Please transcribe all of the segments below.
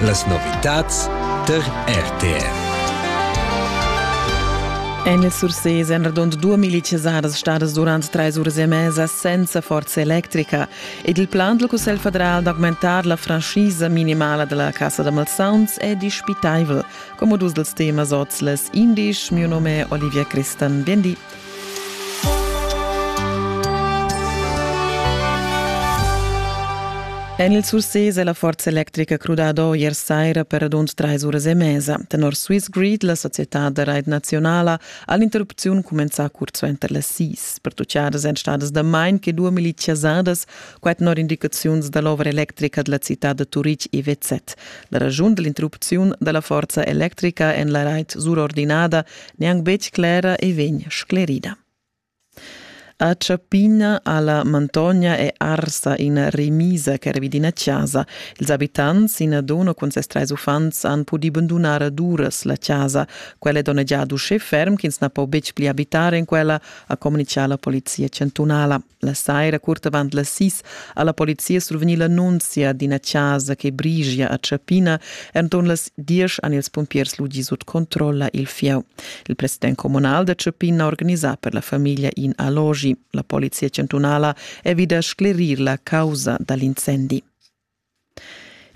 Las novitads tar RTR. En il Sursés èn radund 2000 chasadas stadas durant trais uras e mesa senza forza electrica ed il plan dal Cussegl federal d'augmentar la franschisa minimala da la Cassa da malsauns è dispitaivel, come dus dels temas oz les indisch. Mio nome è Olivia Christan. Bien di. En il Surses è la forza electrica crudada ier saira per radund trais uras e mesa. Tenor Swiss Grid, la societad da rait nazionala, ha l'interrupziun cumenzà curt suenter las sis. Pertucciadas èn stadas damain che due miliz chasadas, quai tenor indicaziuns da l'ovra electrica da la citad da Turitg IWZ. La raschun da l'interrupziun da la forza electrica en la rait surordinada neanc betg clera e vegn sclerida. A Ciappina alla Mantogna è arsa ina remisa che era vid ina casa. Ils abitants, ina donna cun ses trais uffants, han pudì bandunar ad uras la casa. Quella è donnegiada uschè ferm ch'ins na po betg pli abitar en quella, ha communitgà la polizia chantunala. La saira, curt avant las sis, ha la polizia survegnì l'annunzia d'ina chasa che brigia a Chapina. Enturn las diesch han ils pumpiers ludi sut controlla il fieu. Il president communal da Chapina ha organisà per la famiglia in allogi. La polizia chantunala è vid a sclerir la causa da l'incendi.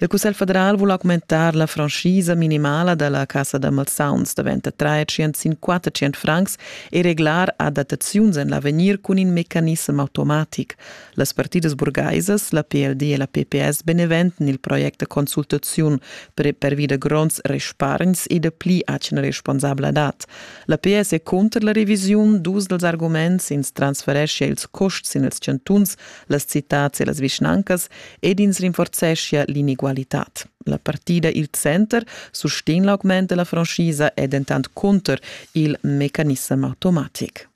Il Cussegl federal vul augmentar la franschisa minimala da la cassa da malsauns da 23 sin 400 francs e reglar adattaziuns en l'avegnir cun in mecanissem automatic. Las partidas burgaisas, la PLD e la PPS beneventan il project da consultaziun per pervida gronds respargns e da pli atgna responsabladad. La PS è cunter la revisiun dus dals arguments ins transfereschia ils custs sin ils chantuns las citads e las vischnancas ed ins rinforzeschia l'inegualitad. La partida Il Center sustegn l'augment della franchisa è dentant contro il mecanism automatic.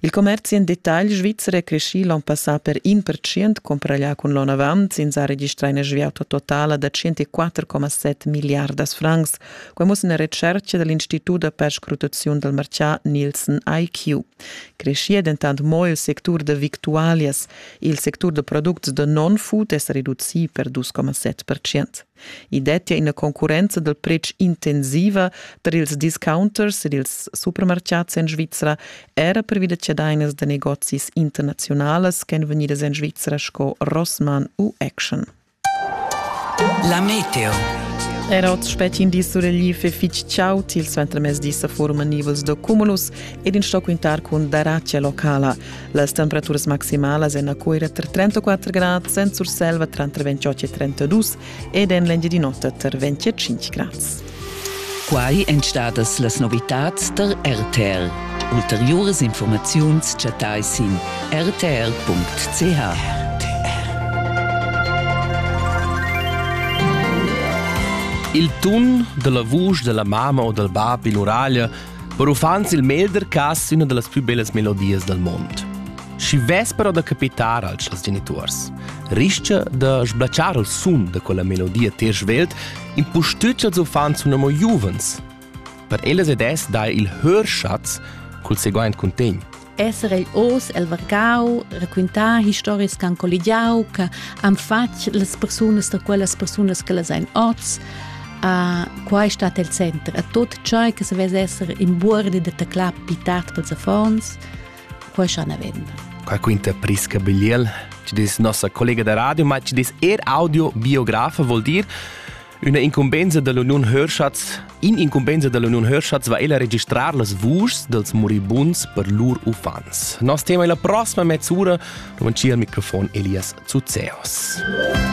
Il commerzi en detagl svizzer è crescì l'on passà per 1% comparaglià cun l'on avant. Ins ha registrà una sviata totala da 104,7 miliardas francs. Quai muss una recerca dell'Institut da perscrutazione del marcià Nielsen IQ. Creschia dentant mo il sectur da victualias. Il sectur da products da non-food è sa reducì per dus coma set percent. I dettia ina concurrenza dal pretsch intensiva tar ils discounters ed ils supermartgads en Svizra, era pervi da chadainas da negozis internaziunalas ch'èn vegnidas en Svizra sco Rossmann u Action. La meteo. Era oz spetg in di suregliv e fitg chaud. Il suentermezdi sa forman nivels da cumulus ed in sto quintar cun daratgia locala. Las temperaturas maximalas en a Cuira tra 34 grad, en Surselva tra 28 e 32 ed en l'Engiadin'Ota tra 25 grad. Quai èn stadas las novitads tar RTR. Ulteriuras informaziuns chattai sin rtr.ch. Il tun dalla vusch della mamma o dal bab in uraglia per uffants il melder cas üna dallas plü bellas melodias dal mond. Schi vespero da capitar als genitors. Rischa da sblacciar il sun da quella melodia ter svelt impustüt ch'els uffants sun amo giuvens. Per ellas ed es dar il hörschatz cul seguaint cuntegn. Esser ei oz el vargau, raquintar historias che han colligiau, che han fatg las persunas da quellas persunas che las ein oz. Uh, qua è stato il centro. A tutto ciò che se vede essere in bordi da teclare pitat per affons. Quai cha n'avevem. Qua quinta Prisca Bigliel, ci dis nossa collega da radio, ma ci dis er audio biografa vuol dir Una incumbensa dell'Union Hörschatz In incumbensa dell'Union Hörschatz va ella registrar las vuschs dels moribunds per lur uffants. Nos tema è la prossima mezz'ura, davanti al microfon Elias Zuzeos.